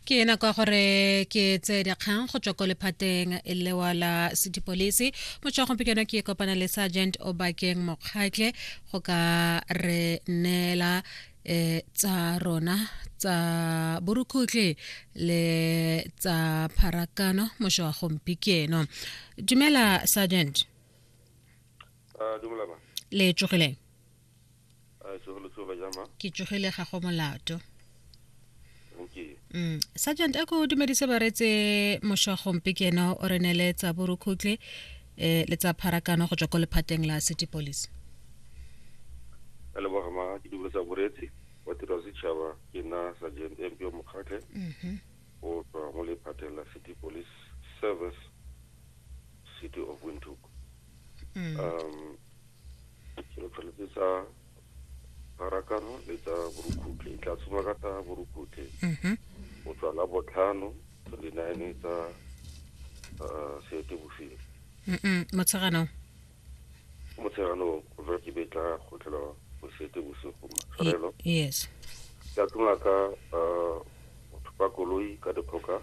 ke ena kwa gore ke tse dikgang go tswa ko lephateng lewa la sepodisi motswa gompieno ke kopana le sergeant obakeng mokgatle go ka re neela um tsa rona tsa borukhutlhe le tsa pharakano mošo wa gompieno dumela sergeant uh, le tsogileng a e tsogelo tsoga jama ke tsogile ga go molato mm. sergeant a ko dumedise baretse mošwa gompe ke ena o re ne le tsa borukhutle um le tsa pharakano go tswa ko lephateng la city police ka leboga ma ke dumele tsa boretsi wa tiro ya setšhaba ke nna sergeant empio mokgatlhe mhm. o tswa mo lephateng la city police service city of windhoek Mm. um selo tshwanetse sa pharakano le tsa borukhutlhe e tla tshoma ka tsa borukhutlhe Mhm. go tswa la botlhano to le nine tsa uh, seetebosigo Mm-mm. motsheganong motshegano go jwa ke be tla kgotlhelwa go seetebosigo matshwarelo Ye- yes tla tshoma ka uh, go thopa koloi ka dikgoka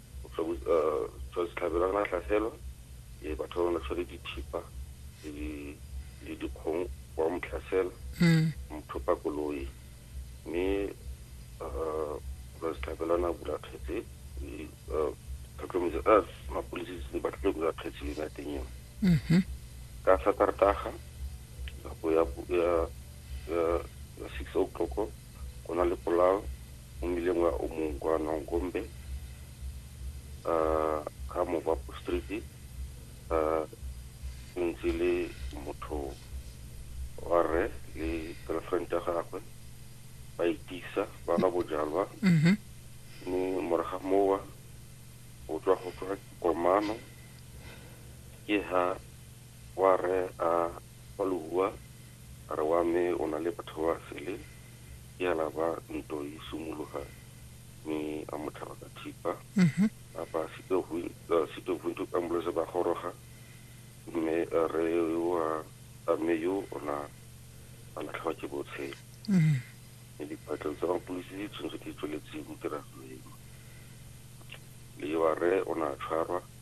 Setlhabelo re na tlhaselo e batho ba bana tshwere dithipa le dikgong wa motlhasela hmm. mothopa koloi mme setlhabelo na bula kgetse tlhotlhometso a mapodisi se ba tlile bula kgetse yone teng eo hmm. ka satartaga nako ya six o'clock go na le polao mo mmileng wa o mongwe kwa nongombe um ka movapo street um ke ntse le motho wa rre le girlfriend ya gagwe ba itisa ba nwa bojalwa mhm mme moraga mowa o tswa go tswa komano ke ha Wa rre a kwa Lehua a re wa me o na le batho ba sele ke a laba nto yi sumologa mi a mo tlhaba ka thipa a ba sito hu sito hu nto ambulance ba goroga mme re wa a me yo o na a latlhwa ke botshe mme diphatlo tsa mapulisi di tshwanetse di tsweletse mo tiragalo eno le wa rre o na tshwarwa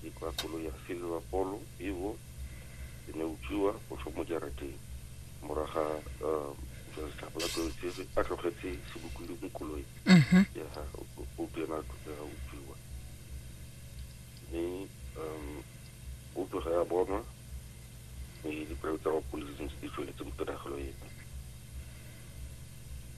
Ke kwa koloi ya Silver Polo Evo e ne utswiwa go tswa mo jarateng. Moraga jwa letlhago la Toetsege a tlogetse sebokodi mo koloi mhm. ya ga Opi ena a tlogega utswiwa. Mme Opi ga ya bonwa mme dipelo tsa mapodisi di ntse di tsweletse mo tiragalo eno.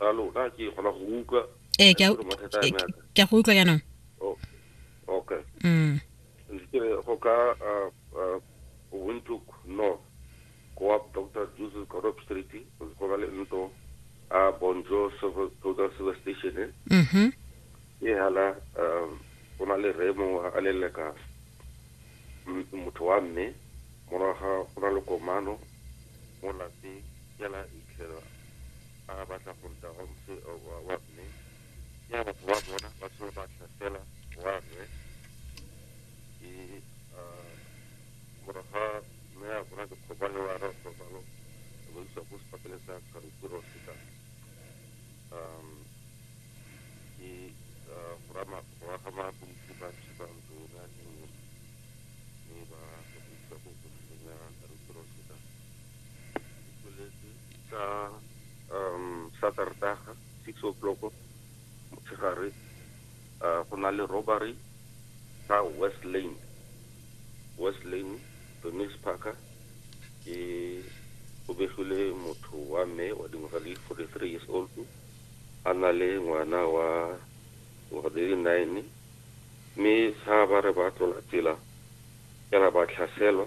a lona ke kgona go utlwa ee ke a Ke mathata a me a ka. ke a go utlwa jaanong O- okay mm ntse ke re go ka uh, uh, windhoek north go wa dr jesus corop street go ba le ntlo a bonjo Silver- total silver station e mhm e hala um go na le remo a leleka m- motho wa mme moraga go na le komano mo lapeng fela itlhela a re batla go ruta wa mse wa mme ke a batho ba bona ba tlhole ba tlhasela wa rre ke morago ga mme a bona dikgoba le wa rre kgobalo ba isa ko sepakele sa kgarukuro seta um ke go aga mapolisi ba tshipa ntlo yona e nngwe mme ba go isa ko kofeleng ya kgarukuro seta ka um saterdaga six o'clock motshegare uh, go na le robbery ka west lane west lane bemis parker ke o begile motho wa mme wa dingwaga le forty three years old a na le ngwana wa ngwaga di le nine mme sa ba re ba tlola tsela fela ba tlhaselwa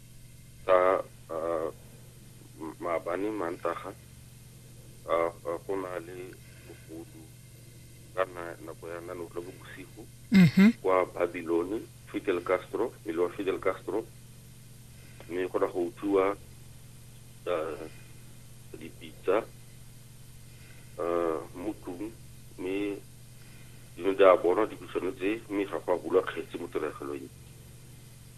tsa uh, maabane mantaga uh, uh, go na le bogodu ka nako ya nano le bo bosigo mm -hmm. kwa babilone fidel castro pele wa fidel castro mme go na go utlwiwa uh, dipitsa uh, mo tlong mme dino di a bonwa dipitsano tse mme ga go a bulwa kgetse mo tiregelong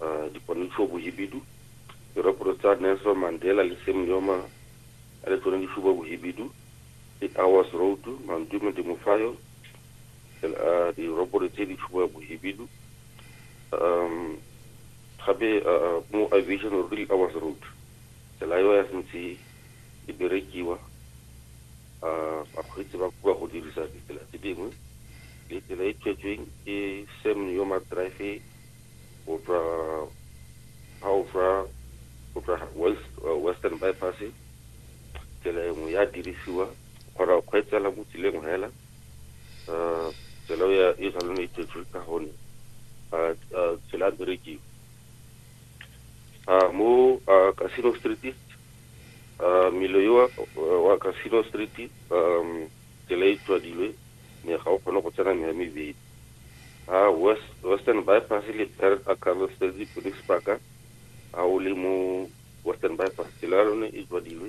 uh, dipontšho bohibidu diraporo tsa nelson mandela le sam yoma a le tsone di suba bohibidu eight hours road mantume demofayo uh, diraporo tse di suba bohibidu um gape uh, mo aviation road eight hours road tsela eo ya sentse e berekiwa bakgweetsi ba koa go dirisa ditsela tse dingwe le tsela e tswetsweng ke sam yoma drive go tswa ga o tswa go tswa uh, western bypass tsela e nngwe ya dirisiwa kgona go kgweetsela mo tseleng fela um tsela ya e tshwanelo e tswetswe ka gone um tsela berekiwa a mo a casino street a milo yo wa casino street um tsela e tswadilwe me ga o kgone go tsena meya mebedi a west western bypass le pere a carlos street police parka a o le mo western bypass tsela ya lone e tswadilwe